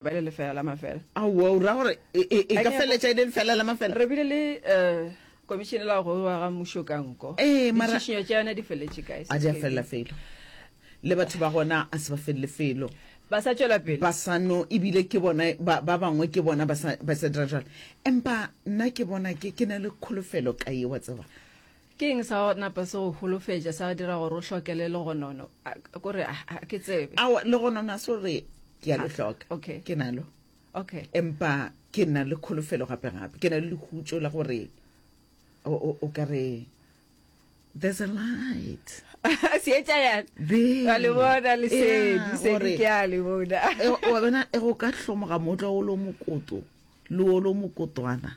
ba le lefela la mafela aowa o ra gore e, e, e ka feletša e le lefela la mafela re bile le um komišene la go wa ga mmušo ka nko ee, ditšhišinyo tša yona di feletše kae a di a felela felo le batho ba gona a se ba felele felo ba sa tšwela pele ba sano ebile ke bona ba bangwe ke bona ba sa dira jalo empa nna ke bona ke ke na le kholofelo ka ye wa tseba ke eng sa napa se go holofetša sa dira gore o hlokele legonono kore a ke tsebe awa legonono a se gore ke ya le hloka okay. ke nalo okay empa ke nna le kholofelo gape gape ke na le lehutso la gore o ka re there's a light seetša yana le bona lesedi sedi ke a le bona e, e, e, wa bona e go ka hlomoga motlo o lo mokoto le o lo mokotwana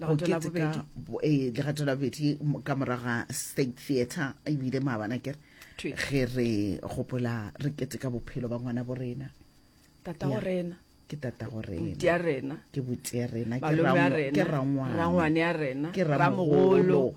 go keteka eh, legato la bobedi ka morago ga state theatre ebile maabana kere ge re gopola re keteka bophelo ba ngwana bo rena tata go rena ke tata go rena rena ke botia rena ke rangwane ya rena ke ramogolo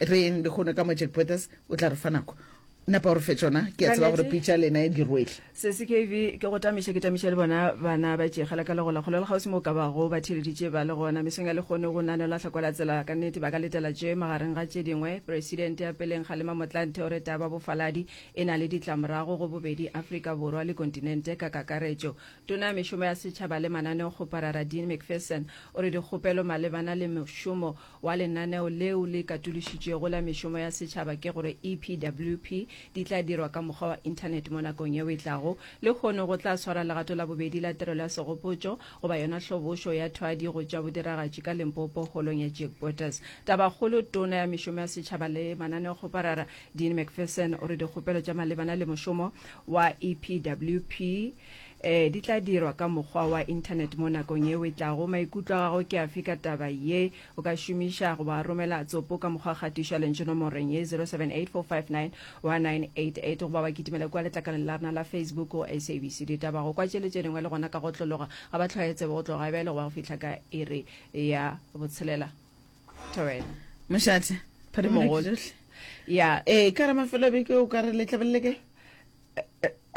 reng lehono ka mo jack potters o tla re fa nako napa gore fe tsona ke a tseba gore pitša lena e dirwele se se kv ke go tamiša ke tamiša le bona bana ba tšegela ka legola kgolo le kgausimo ka bago ba theleditše ba le gona mesong ya lekgone go nane la hlakwela tsela ka nnete ba ka letela tše magareng ga tše dingwe presidente ya peleng kgalema motlante o reta ba bofaladi e na le ditlamorago go bobedi afrika borwa le kontinente ka kakaretšo tona ya mešomo ya setšhaba le mananeo kgoparara dean mcpherson o re dikgopelo malebana le mošomo wa lenaneo leo le katološitšwego la mešomo ya setšhaba ke gore EPWP di tla dirwa ka mokgwa wa Internet mo nakong yeo e tlago. Lehono go tla swarwa legato la bobedi la tirelo ya segopotšo goba yona hlobošo ya thwadi go tšwa bodiragatši ka Limpopo holong ya Jack Bottas. Tabakgolo, Tona ya mešomo ya setšhaba le mananeokgoparara Dean McPherson o re dikgopelo tša malebana le mošomo wa EPWP Ee, di tla dirwa ka mokgwa wa Internet mo nakong yeo e tlago. Maikutlo a gago ke afe ka taba ye? O ka šomiša goba romela tsopo ka mokgwa wa kgatišo ya lentšu nomoreng ye 0784591988 goba wa kitimela kua letlakaleng la rena la Facebook go SABC Ditaba. Go kwa tše le tše dingwe le gona ka go tlologa ga ba tlhwaetsebe go tloga e bjale go ba go fihla ka iri ya botshelela. Thobela. Mošate, phadimo ya ke tšohle. Ya. Ee, ka re mafelobeke o ka re letlabelele kae?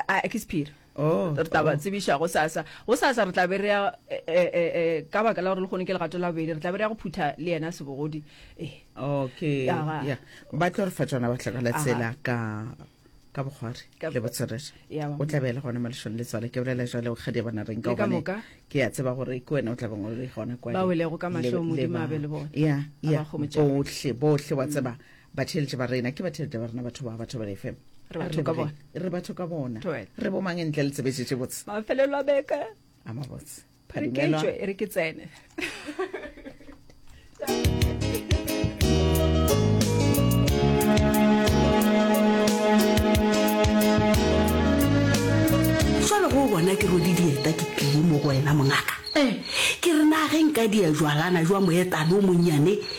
a ke sephiri oh, re taba oh. tsebiša go sasa go sasa re tlabe re ya eh, eh, eh, ka baka la gore le kgone ke legato la bobedi re tlabe re ya go phutha le yena sebogodi okay ba tlo re fa tsona ba tlakala tsela ka ka bogware le botswerere o tla beele gone maleshong le tswale ke bolela jale ga di bona reng ka gone ke ya tseba gore ke wena o tla beng o le gone kwa ba welego ka mahlong modimo abe le bone ya ya bohle bohle wa tseba batheeletše ba rena ke batheeletše ba rena batho ba batho ba lefe re batho ka bona re batho ka bona re bomang ntle le tsebetse tše botse mafelelo a beka a mabotse re ke tšwe re ke tsene jalo go bona ke rodi dieta ke tlile mo go wena mongaka ee ke re nageng ka dia jwalana jwa moetano o monnyane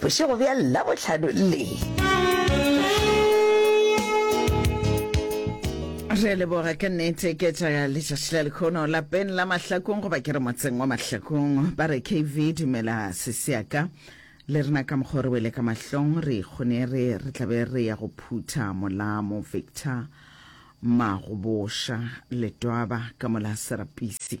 Bošego bja Labohlano le. Re a leboga ka nnete ke tša letšatši la lekgono lapeng la mahlakong goba ke re motseng wa mahlakong ba re kv dumela seseaka le rena ka mokgwa re wele ka mahlong re ikgonere re tlabe re ya go phutha molamo victor magoboša letwaba ka mola serapisi